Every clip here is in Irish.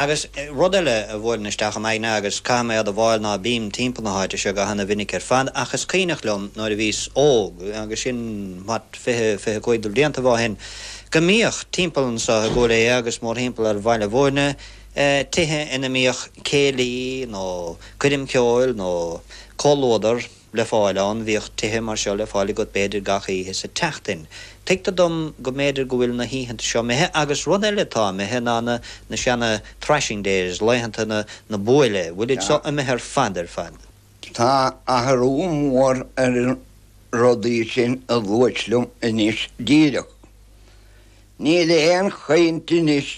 Agus rud eile a bhuaileann isteach im aigne, agus caithfidh mé a admháil ná bím timpeall na háite seo go h-ana-mhinic ar fad, ach is cuimhneach liom nuair a bhíos óg, agus sin, what, fiche, fiche cúig de bhliantaibh ó shin, go mbíodh, timpeall anso i gCúil Aodha agus mórthimpeall ar Bhaile Mhúirne, tithe ina mbíodh céilí, nó coirm ceoil, nó comhluadar. le fáil ann. Bhíodh tithe mar seo le fáil agat b'fhéidir gach oíche sa tseachtain. Tuigtear dom go mb'fhéidir go bhfuil na hoícheanta seo imithe agus rud eile atá imithe ná na na seana threshing days, laethanta na na buaile, bhfuilid seo imithe ar fad, ar fad. Tá athrú mór ar na rudaí sin a luaite liom anois díreach. Níl aon chaint anois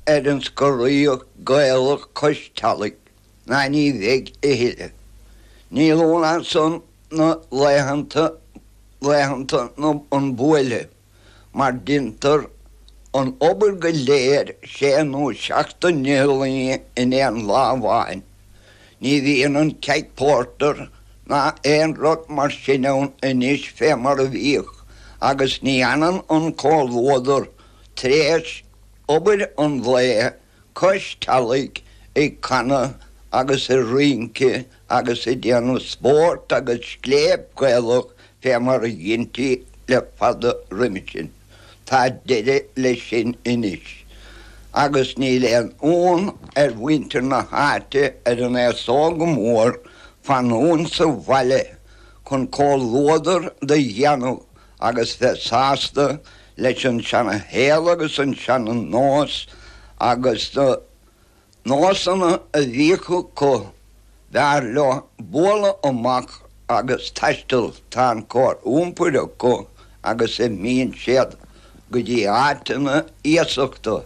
ar an scoraíocht Gaelach cois teallaigh. ná ní bheidh a thuilleadh. Níl, ná ansan na laethanta, laethanta na, an bhuailte, mar deintear an obair go léir sé nó seacht n-iothlainn in aon lá amháin. Ní bhíonn an keg pórtair ná aon rud mar sin ann anois fé mar a bhíodh agus ní fhanann an comhluadar tar éis obair an lae cois teallaigh ag canadh agus ag rince agus ag déanamh spórt agus scléip Ghaelach fé mar a dheintí le fada roimhe sin. Tá deireadh leis sin anois. Agus níl aon fhonn ar mhuintir na háite ar an aos óg go mór fanúint sa bhaile chun comhluadar do dhéanamh agus bheith sásta leis an seana-shaol agus an seana-nós agus na nósanna a bhíodh acu, b'fhearr leo bualadh amach agus taisteal, tá an chóir iompair acu agus imíonn siad go dtí áiteanna iasachta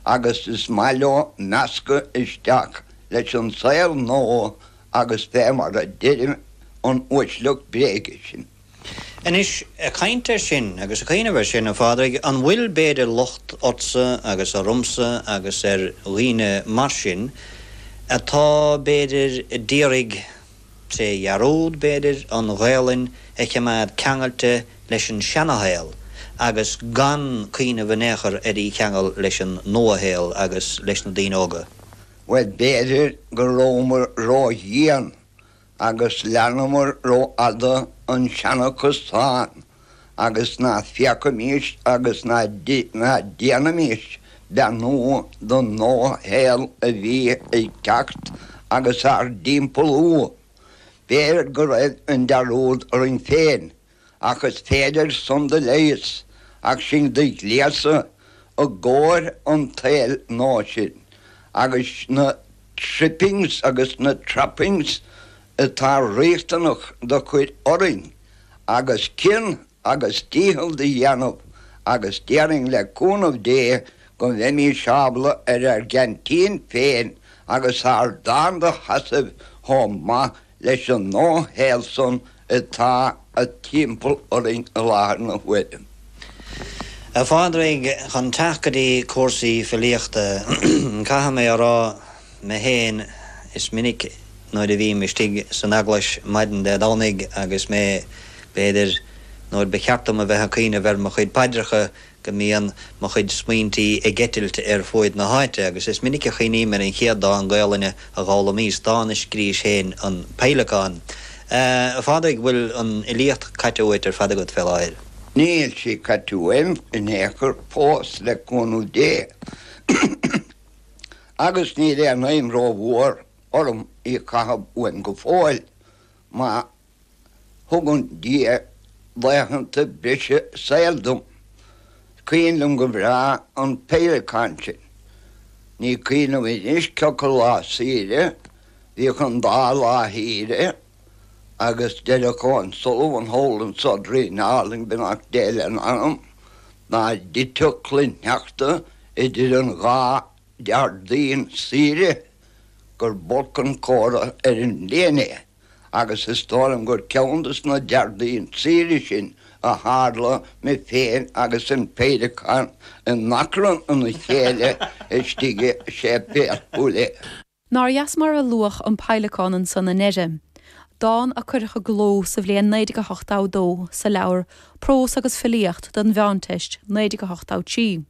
agus is maith leo meascadh isteach leis an saol nua agus bheith mar a deireadh an uaisleacht bréige sin. Anois, ag caint air sin agus ag cuimhneamh air sin, a Phádraig, an bhfuil b'fhéidir locht ortsa agus ormsa agus ar dhaoine mar sin atá, b'fhéidir, ad iarraidh, tré dhearúd, b'fhéidir, an Ghaelainn a chimeád ceangailte leis an seana-shaol agus gan cuimhneamh in aon chor ar í cheangal leis an nua-shaol agus leis na daoine óga? Bhuel, b'fhéidir go rabhamar ródhian agus leanamair rófhada an seana-chasán agus ná féachaimist agus ná déanaimist beannú don nua-shaol a bhí ag teacht agus ár dtimpeallú. B'fhéidir go raibh an dearúd orainn féin Ach is féidir san do leigheas ach sinn do ghléasadh i gcomhair an tsaoil nua sin agus na trippings agus na trappings atá riachtanach do chur orainn agus cion agus dícheall do dhéanamh agus déarfainn le cúnamh Dé go mbeimís ábalta ar ár gceaintín féin agus ár dán do sheasamh chomh maith leis an nua-shaol san atá timpeall orainn i láthair na huaire. A Phádraig, chun teacht go dtí cúrsaí filíochta, caithfidh mé a rá mé fhéin, is minic nuair a bhím istigh san eaglais maidin Dé Domhnaigh agus mé, b'fhéidir, nuair ba cheart dom a bheith ag cuimhneamh ar mo chuid paidreacha, go mbíonn mo chuid smaointí ag eitilt ar fuaid na háite, agus is minic a chuimhním ar an chéad dán Gaolainne a d'fhoghlaimíos, dán a scríobhais féin, An Peidhleacán. A Phádraig, bhfuil an fhilíocht caite uait ar fad agat fé láthair? Níl sí caite uaim in aon chor fós, le cúnamh Dé, agus níl aon aidhm rómhór orm í a chaitheamh uaim go fóill, má thugann Dia laethanta breise saoil dom. Is cuimhin liom go breá an peidhleacán sin. Ní cuimhin liom anois cioca lá saoire bhíodh an dá lá shaoire agus deireadh Seán Sullivan, Hole and Sodrey in Arling beannacht Dé lena anam dá dtiteadh cloichshneachta idir an dá Dhéardaoin saoire gur b'olc an comhartha ar an mbliain é. agus is dóigh liom gur ceann des na Déardaoin saoire sin a tharla mé féin agus an peidhleacán in achrann ina chéile istigh i séipéal Chúil Aodha. Nár dheas mar a luadh an peidhleacán anso i ndeireadh, dán a cuireadh i gcló sa bhliain 1982 sa leabhar Prós agus Filíocht don Mheánteist, 1983.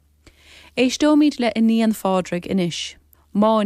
Éisteoimid le Iníon Phádraig anois. Máinigh.